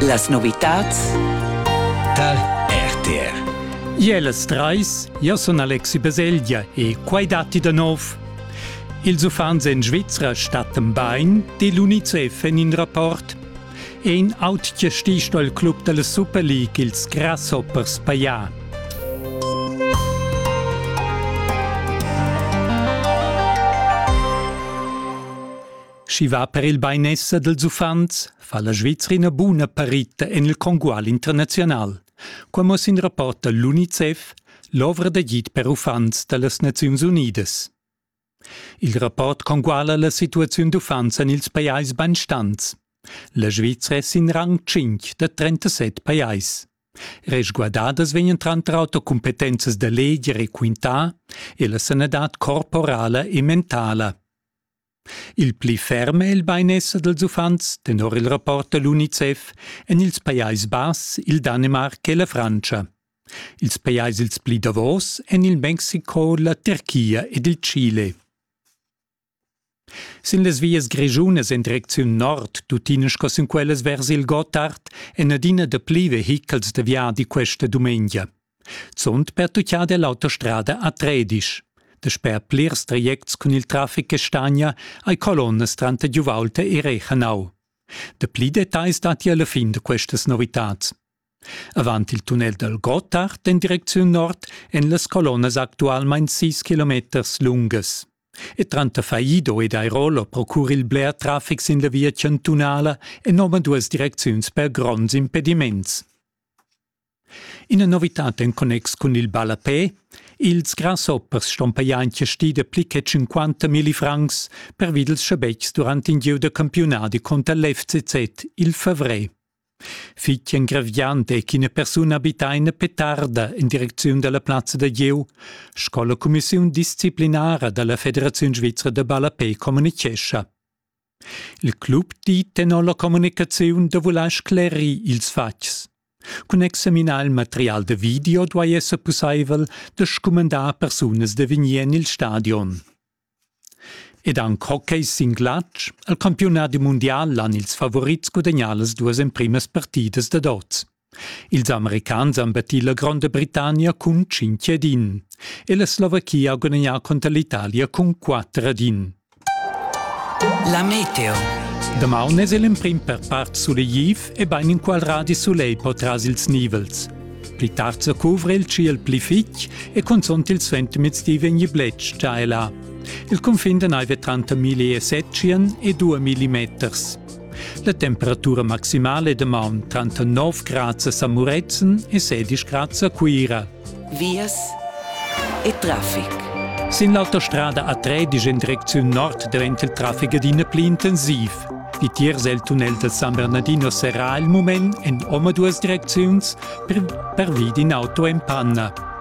Las novitads tar RTR. Jeles Treis, io sun Alexi Baselgia e quai datti da nov. Ils uffants en Svizra stattan bain, di l'UNICEF en in rapport. Ein autge sticht al club dalla Super League ils Grasshoppers paia. Schi va per il beinesser dels uffants fa la Svizrina buna parita en il congual internazional. Qua mo sin rapporta l'UNICEF, l'ovra d'agid per uffants da las Naziuns Unidas. Il rapport conguala la situaziun d'uffants en ils pajais banstants. La Svizra è sin rang 5 da 37 pajais. Resguardadas vegnan tranter auter cumpetenzas da leger e quintà e la sanadad corporala e mentala. Il pli ferm è il bainesser dals uffants, tenor il rapport da l'UNICEF, en ils Pajais Bass, il Danemarc e la Frantscha. Ils pajais ils pli davos èn il Mexiko, la Turchia ed il Chile. Sin las vias grischunas en direcziun nord, tuttina sco sin quellas vers il Gottard, èn adina dapli vehichels da viadi questa dumengia. Zunt pertuccada è l'autostrada a Tredisch. Dasper plirs trajects cun il traffic che stagna hai colonnas tranter Giuvaulta e Rechenau. Dapli detagls datti alla fin da questas novitads. Avant il tunnel dal Gottard en direcziun nord èn las colonnas actualmain 6 kilometers lungas. E tranter Faido ed Airolo procura il bler traffic sin la via chantunala enorme duas direcziuns per gronds impediments. Ina novitad en connex cun il ballapè Ils grasoppers ston pajaintia stida pli che 50 milli francs pervi dals schabetgs durant in gieu da campiunadi cunter l'FCZ il favrer. Fitg engraviant è ch'ina persuna abitaina petarda in direcziun dalla plazza da gieu sco la cumissiun disciplinara dalla Federaziun svizra da ballapè communichescha. Il club di tenor la communicaziun da vuler sclerir ils fatgs. Cun examinar il material da video duai esser pussaivel da scumandar persunas da vegnir en il stadion. Ed anc hockey sin glatsch, al campiunadi mundial han ils favorits gudagnà las duas emprimas partidas dad oz. Ils Americans han battì la Gronda Britannia cun tschintg ad in e la Slovachia ha gudagnà cunter l'Italia cun quatter ad in. La meteo. Damaun es el emprim per part sulegliv e bain inqual radi sulegl po tras ils nivels. Pli tard sa cuvra il tschiel pli fitg e cunzunt il suentermiezdi di vegni bletsch già e là. Il cunfin da naive tranter 1007 e 2000 meters. La temperatura maximale è damaun tranter 9 grads a Samurezen e 16 grads a Cuira. Vias e traffic. Sin l'autostrada A13 in direcziun nord diventa il traffic adina pli intensiv. Vitiers è il tunnel del San Bernardino serrà il moment en omaduas direcziuns per, per vid in auto en panna.